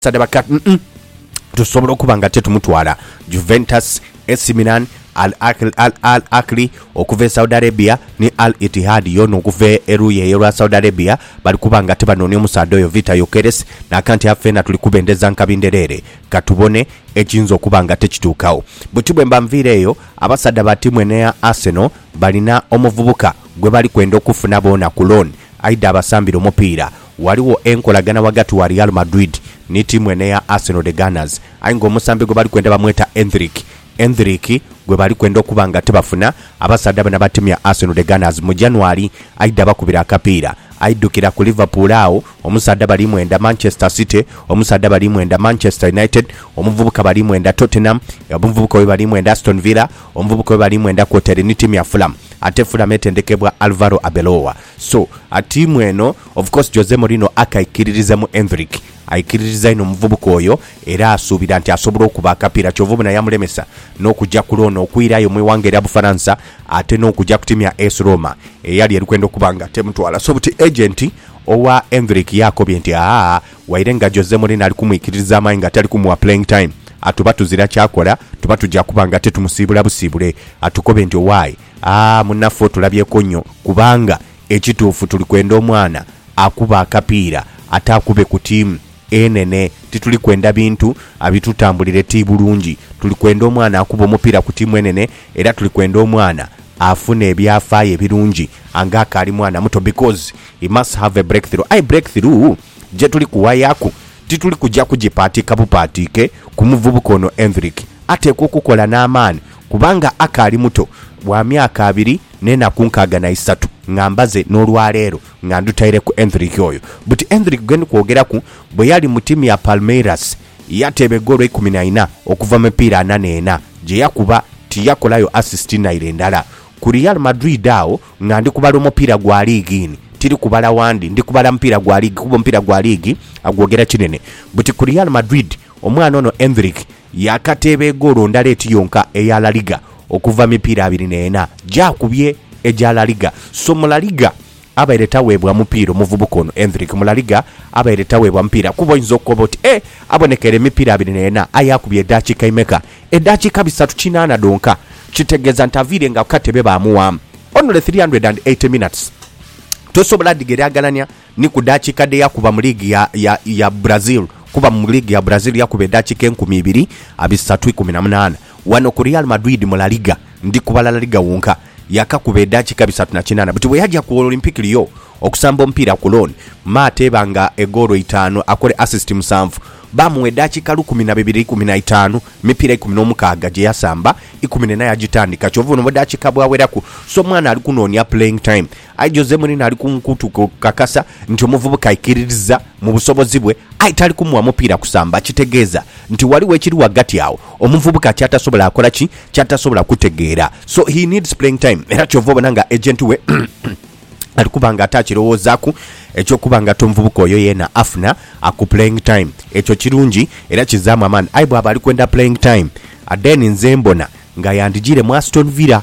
Sadaba Kat mm tusobola okuba nga tetumutwala Juventus, AC Milan, Al Ahly, Al Al Ahly okuva e Saudi Arabia ni Al Ittihad yoona okuva eruuyi eyo lwa Saudi Arabia bali kuba nga tibanoonia omusaadha oyo Vitor Gyokeres naaka nti afeena tuli kubendeza nkabi ndhereere katubone ekiyinza okuba nga tekituukawo. Buti bwe mba nviire eyo abasaadha ba ttiimu eno eya Arsenal balina omuvubuka gwe bali kwenda okufuna boona ku loan aidha abasambire omupiira. Ghaligho enkolagana ghagati wa Real Madrid ni tiimu eno eya Arsenal The Gunners aye nga omusambi gwe bali kwenda bamweta Endrick Endrick gwe bali kwenda okuba nga tibafuna. Abasaadha bano abatimya Arsenal The Gunners mu January aidha bakubira akapiira aidhukira ku Liverpool agho omusaadha bali mwenda, Manchester City omusaadha bali mwenda, Manchester United omuvubuka bali mwenda, Tottenham omuvubuka oyo bali mwenda, Aston Villa omuvubuka oyo bali mwenda kwotaire ni tiimu ya Fulham ate Fulham etendekebwa Alvaro Arbeloa. So atiimu eno of course Jose Mourinho akaikiririza mu Endrick, aikiririza inho omuvubuka oyo era asuubira nti asobola okuba akapiira kyova obona yamulemesa n'okuja ku loan okwirayo mu ighanga erya Bufaransa ate n'okuja ku tiimu ya AS Roma eyali eri kwenda okuba nga temutwala so buti agent owa Endrick yakobye nti aa waire nga Jose Mourinho ali kumwikiririza amaani nga tali kumuwa playing time atuba tuzira kyakola tuba tuja kuba nga tetumusiibula busiibule atukobe nti owaye Aah munafu otulabyeku nyo kubanga ekituufu tuli kwenda omwana akube akapiira ate akube ku tiimu enene tituli kwenda bintu abitutambulire ti bulungi tuli kwenda omwana akube omupiira ku tiimu enene era tuli kwenda omwana afune ebyafaayo ebirungi anga akaali mwana muto because he must have a breakthrough aye breakthrough gyetuli kuwayaku tituli kugya kugipaatiika bupaatiike ku muvubuka ono Endrick ateekwa okukola n'amaani Kubanga akaali muto, wa myaka abiri n'enaku nkaaga na isatu nga mbaze n'olwaleero nga ndutaireku endhiriki oyo. Buti endhiriki gwe ndi kwogeraku, bwe yali mu tiimu ya Palmeiras, yateeba egoolo eikumi na ina okuva mu mipiira ana n'ena gye yakuba, tiyakolayo asisiti naire ndala. Ku Real Madrid agho nga ndi kubala omupiira gwa liigi ini, tiri kubala wandi, ndi kubala mupiira gwa liigi kuba omupiira gwa liigi agwogera kinene. Buti ku Real Madrid, omwana ono endhiriki Yaakateeba egoolo ndala eti yonka eya La Liga okuva mipiira abiri n'ena gy'akubye egya La Liga. So mu La Liga abaire taweebwa mupiira omuvubuka ono, Endrick, mu La Liga abaire taweebwa mupiira kuba oinza okoba oti, Eh, abonekera emipiira abiri n'ena aye akubye edaakiika imeka? Edaakiika bisatu kinaana dhonka, kitegeeza nti aviire nga ku katebe baamuwaamu only three hundred and eighty minutes. Tosobola dhigeraagerania. Ni ku dakika dhe yakuba mu liigi ya, ya, ya Brazil, kuba mu liigi ya Brazil yakuba edakika enkumi ibiri abisatu ikumi na munaana. Wano ku Real Madrid mu La Liga, ndi kubala La Liga wonka, yakakuba edakika bisatu na kinaana. Buti bwe yaja ku Olympique Lyon okusamba omupiira ku loan, me ateeba nga egoolo itaanu, akole assist musanvu. Baamugha edakika lukumi na bibiri ikumi na itaanu, mipiira ikumi n'omukaaga gye yasamba, ikumi n'ena yagitandika. Kyova olumva dakika bwaweraku. So mwana ali kunoonia playing time. Aye Jose Mourinho ali ku nkuutu kukakasa nti omuvubuka aikiririza mu busobozi bwe aye tali kumuwa mupiira kusamba. Kitegeeza nti ghaligho ekiri ghagati agho omuvubuka kyatasobola kola ki? Kyatasobola kutegeera. So he needs playing time era kyova obona nga agent we ali kuba nga ate akirowoozaaku eky'okuba nga ate omuvubuka oyo yeena afuna aku playing time. Ekyo kirungi era kizaamu amaani. Aye bwaba ali kwenda playing time, then nze mbona nga yandijiire mu Aston Villa.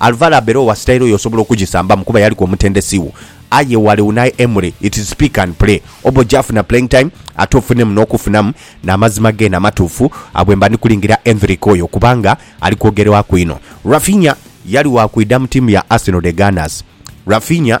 Alvaro Arbeloa sitayiro yo osobola okugisambamu kuba yaliku omutendesi wo. Aye ghale Unai Emery it's pick and play. Oba oja funa playing time ate ofunemu n'okufunamu n'amazima geene amatuufu abwe mba ndi kulingira Endrick oyo kubanga ali kwogerwaku inho. Raphinha yali wa kwidha mu tiimu ya Arsenal The Gunners. Raphinha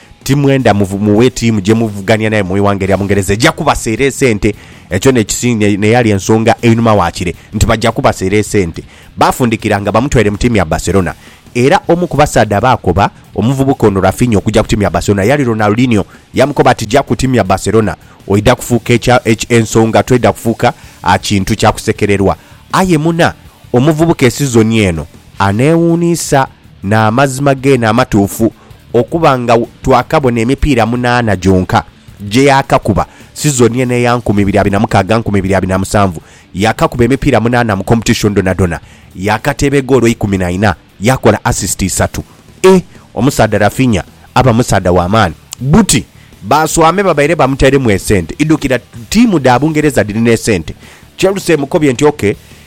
Ti mwenda mughe tiimu gye muvugania nayo mu ighanga erya Bungereza eja kubaseera esente. Ekyo n'eyali ensonga einhuma waakire nti baja kubaseera esente. Baafundikira nga bamutwaire mu tiimu ya Barcelona. Era omu ku basaadha abaakoba omuvubuka ono Raphinha okuja ku tiimu ya Barcelona yali Ronaldinho. Yamukoba ati, Ja ku tiimu ya Barcelona oidha kufuuka ensonga, toidha kufuuka kintu kya kusekererwa. Aye muna, omuvubuka esizoni eno aneewuunisa. N'amazima geene amatuufu, okuba nga twakabona emipiira munaana gyonka gye yaakakuba sizoni eno eya nkumi ibiri abiri na mukaaga nkumi ibiri abiri na musanvu, yaakakuba emipiira munaana mu kompetishoni dhonadhona, yaakateeba egoolo ikumi na ina, yaakola asisiti isatu. E! Omusaadha Raphinha aba musaadha wa maani! Buti baaswame babaire bamuteiremu esente idhukira ttiimu dha Bungereza dhirina esente. Chelsea emukobye nti, OK.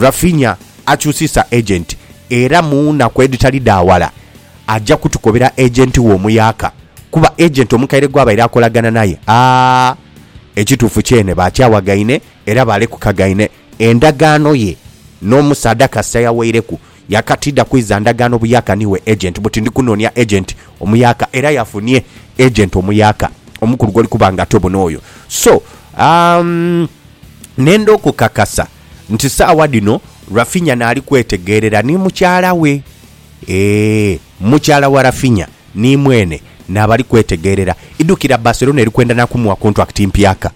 Raphinha akyusiisa agent era mu naku edhitali dha wala aja kutukobera agent we omuyaka kuba agent omukaire gwabaire akolagana naye aah ekituufu kyene baakyawagaine era baalekukagaine endagaano ye n'omusaadha kasita yawaireku yakatiidha kwiza ndagaano buyaka niiwe agent buti ndi kunoonia agent omuyaka era yafunie agent omuyaka omukulu gwoli kuba nga tobona oyo so umm nenda okukakasa. nti saagha dhino Raphinha naali kwetegeerera ni mukyala we. Eeh, mukyala wa Raphinha ni mweene naabali kwetegeerera. Idhukira Barcelona eri kwenda na kumugha kontwakiti mpyaka.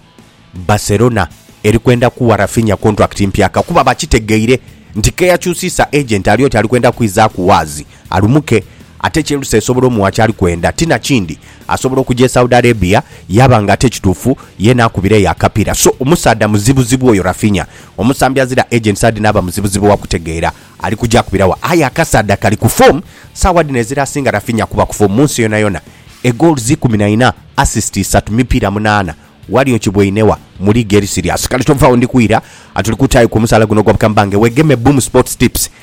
Barcelona eri kwenda kugha Raphinha kontwakiti mpyaka kuba bakitegeire nti k'eyakyusiisa agent ali oti ali kwenda kwizaaku waazi. Alumuke, ate Chelsea esobola omuwa kyali kwenda. Ti na kindi, asobola okuja e Saudi Arabia yaba nga ate ekituufu ye n'akubira eyo akapiira. So, omusaadha muzibuzibu oyo Raphinha. Omusambi azira agent saidi n'aba muzibuzibu wa kutegeera ali kuja akubira wa. Aye akasaadha kali ku foomu. Saawa dhino ezira asinga Raphinha kuba ku foomu mu nsi yonayona. E goals ikumi na ina, assist isatu, mipiira munaana. Wali okiboine wa? Mu liigi eri siriasi. Kale tovaawo, ndi kwira. Tuli kutaayo ku musaala guno ogwa bukambange. Wegeme Boom Sports Tips.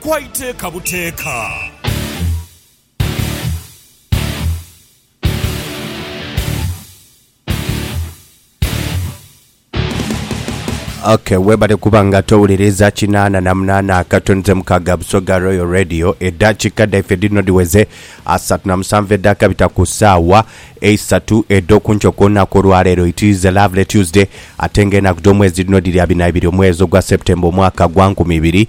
kwa iteeka buteeka. Okay, webale kuba nga towuliriza kinana na munana akatono ze mukaga busoga royal radio edakika daife dino diweze asatu na musanvu edakabita ku saawa eisatu edokunkyo kwonaku olwaleero it is a lovely tuesday ate nga enaku domwezi dino diri abiri na ibiri omwezi ogwa september omwaka gwa nkumi ibiri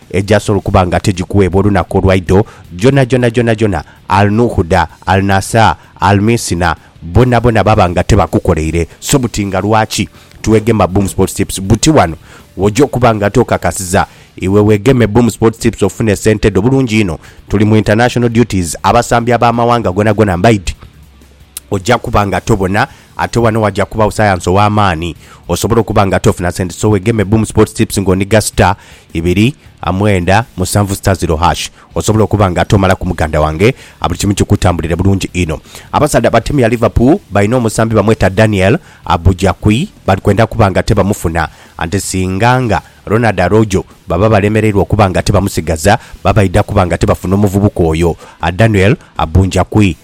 Egyasoola okuba nga tegikuweebwa olunaku olwaidho, gyonhagyonha gyonhagyonha Al-Nuhuda, Al-Nasaa, Al-Miisina, boonaboona baba nga tebakukoleire. So buti nga lwaki twegema Boom Sports Tips? Buti ghano w'oja okuba nga tokakasiza iwe wegeme Boom Sports Tips ofune sente dho bulungi inho. Tuli mu international duties, abasambi ab'amawanga gonagona mbaidhi. Oja kuba nga tobona Ate wano waja kubawo sayansi owamaani osobola okuba nga ate ofuna sente so wegeme Boom Sports Tips nga oniga star ibiri mwenda musanvu star zero hash osobola okuba nga ate omalaku muganda wange buli kimu kikutambulire bulungi inho. Abasaadha abatemi a Liverpool balina omusambi bamweta Daniel Abujakwi bali kwenda kuba nga ate bamufuna ante singa nga Ronald Arojo baba balemereirwa okuba nga ate bamusigaza baba baidha kuba nga ate bafuna omuvubuka oyo Daniel Abunjakwi.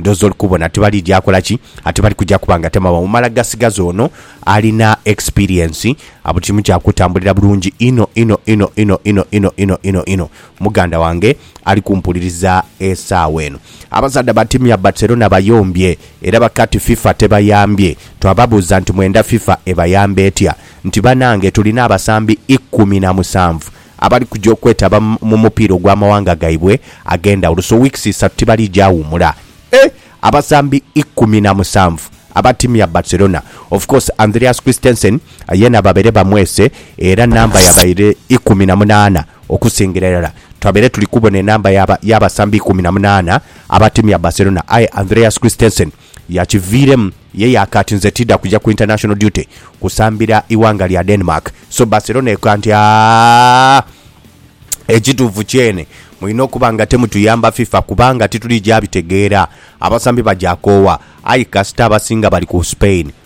Ndhoozi oli kubona tibalija akola ki? Ate bali kuja kuba nga temawo mala gasigaza ono alina experience. Buli kimu kya kutambulira bulungi inho inho inho inho inho inho inho inho inho. Muganda wange ali kumpuliriza esaawa eno. Abasaadha ba tiimu ya Barcelona bayombye era bakati FIFA tebayambye. Twababuuza nti mwenda FIFA ebayambe etya? Nti banange tulina abasambi ikumi na musanvu abali kuja okwetaba mu mupiira ogw'amawanga gaibwe ag'endhawulo so wiikisi isatu tibaliija wumula e Abasambi ikumi na musanvu aba ttiimu ya Barcelona of course Andreas Christensen yeena babaire bamwese era namba yabaire ikumi na munaana okusingira irala Twabaire tuli kubona enamba y'abasambi ikumi na munaana aba ttiimu ya Barcelona aye Andreas Christensen Yakiviiremu ye yaaka ati, Nze tiidha kuja ku international duty kusambira ighanga lya Denmark. So Barcelona ekoa nti, Aah, ekituufu kyene mwine okuba nga temutuyamba fifa kubanga tituli gya bitegeera. Abasambi bagya koowa aye kasita abasinga bali ku Spain.